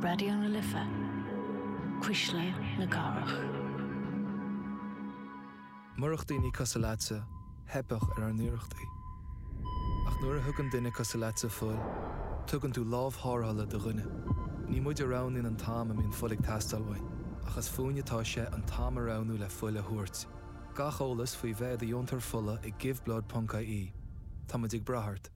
Raidió na Life, Cuisle na Cathrach. Murach daoine cosúil leatsa, theipfeadh ar ár n-iarrachtaí. Ach nuair a thugann duine cosúil leatsa fuil, tugann tú lámh thárrthála do dhuine. Ní muid a roghnaíonn an t-am a mbíonn fuil ag teastáil uainn, ach is fúinn atá sé an t-am a roghnú le fuil a thabhairt. Gach eolas faoi bheith i do dheontóir fola ag Give Blood ponc ie Tá muid ag brath ort.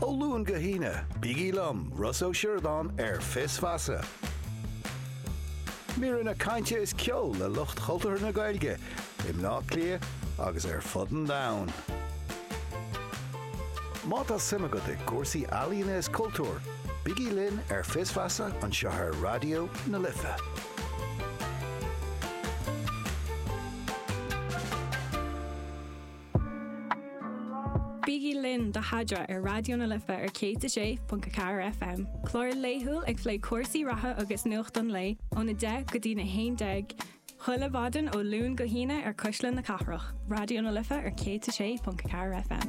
Ó Luan go hAoine, bígí liom, Ros Ó Sioradáin ar Fios Feasa. Míreanna cainte is ceol le lucht cultúrtha na Gaeilge i mBleá Cliath agus ar fud an domhain. Má tá suim agat i gcúrsaí ealaíona is cultúir, bígí linn ar Fios Feasa anseo ar Raidió na Life. Bígí linn do Chaidreamh ar Raidió na Life ar 106.4 FM, clár laethúil ag plé cúrsaí reatha agus nuacht an lae óna deich go dtí a haon déag chuile mhaidin ó Luan go hAoine ar Cuisle na Cathrach, Raidió na Life ar 106.4 FM.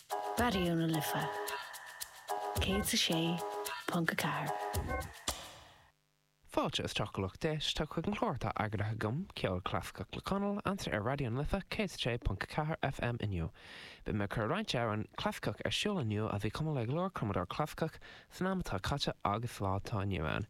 Raidió na Life 106.4. Fáilte is céad daoibh atá chuig an chlár atá eagraithe agam, Ceol Clasaiceach le Conal, anseo ar Raidió na Life 106.4 FM inniu. Beidh mé ag cur roinnt amhrán clasaiceach ar siúl inniu a bhí cumtha le go leor cumadóir clasaiceach san am atá caite agus lá atá inniu ann.